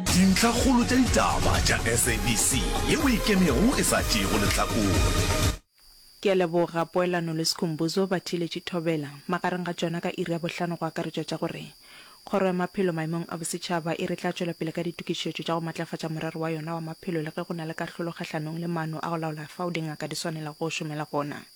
Dintlhakgolo tša ditaba tša SABC ye o e kenego e sa tšeego lehlakore. Ke a leboga Poelano le Skhumbuzo ba theeletše thobela magareng ga tšona ka iri ya bohlano go akaretšwa tša gore Kgoro ya Maphelo Maemong a Bosetšhaba e re tla tšwela pele ka ditokišetšo tša go matlafatša morero wa yona wa maphelo le ge go na le kahlolo kgahlanong le maano a go laola fao dingaka di swanelago go šomela gona.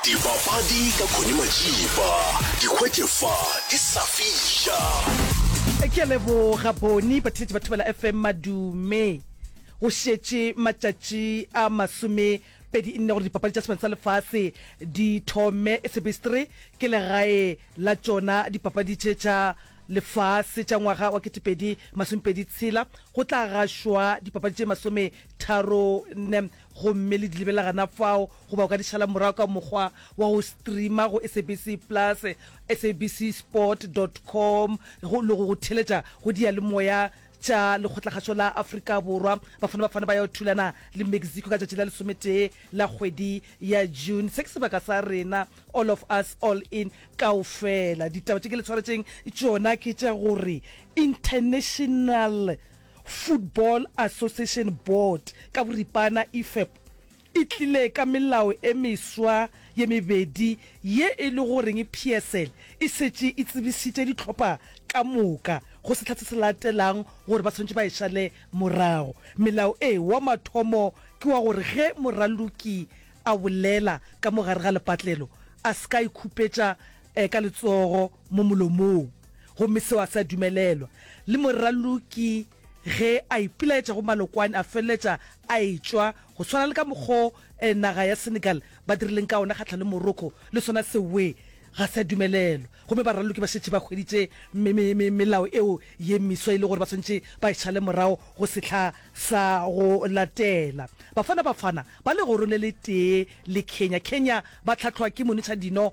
Dipapadi ka Connie Majiba, Dikgwete fa di sa fiša. Ke a leboga Boni. Batheletši ba Thobela FM madume. Go šetše matšatši a masome pedi nne gore dipapadi tša sebane sa lefase di thome. Sebestre ke legae la tšona dipapadi tše tša lefase tša ngwaga wa ketepedi masomepedi tshela. Go tla gašwa dipapadi tše masometharo nne. gomme le di lebelela gana fao goba o ka di šala morago ka mokgwa wa go streama go sabc plus sabc sport com go le go go theletša go diyalemoya tša lekgotlakgašo la afrika borwa bafana bafana ba ya thulana le mexico ka tšatši la lesometee la kgwedi ya june se ke sebaka sa rena all of us all in kao fela ditaba tše ke le tshwaretšeng tšona ke tša gore international Football Association Board ka boripana, IFAB, e tlile ka melao e meswa ye mebedi ye e le goreng PSL e šetše e tsebišitše dihlopha ka moka go sehla se se latelang gore ba swanetše ba e šale morago. Melao e, wa mathomo ke wa gore ge moraloki a bolela ka mo gare ga lepatlelo a se ka ikhupetša eh, ka letsogo mo molomong gomme seo a se a dumelelwa le moraloki ge a ipilaetša go malokwane a feleletša a etšwa go tshwana le ka mokgo eh, naga ya senegal ba dirileng ka ona kgatlha le morocco le sona sewe ga se a dumelelwa gomme baraloki ba šetše ba hweditše me- me- me- melao eo ye meswa e le gore ba swantše ba e šale morago go sehla sa go latela bafana bafana ba legoro le le tee le kenya kenya ba tlhatlhwa ke monetšha dino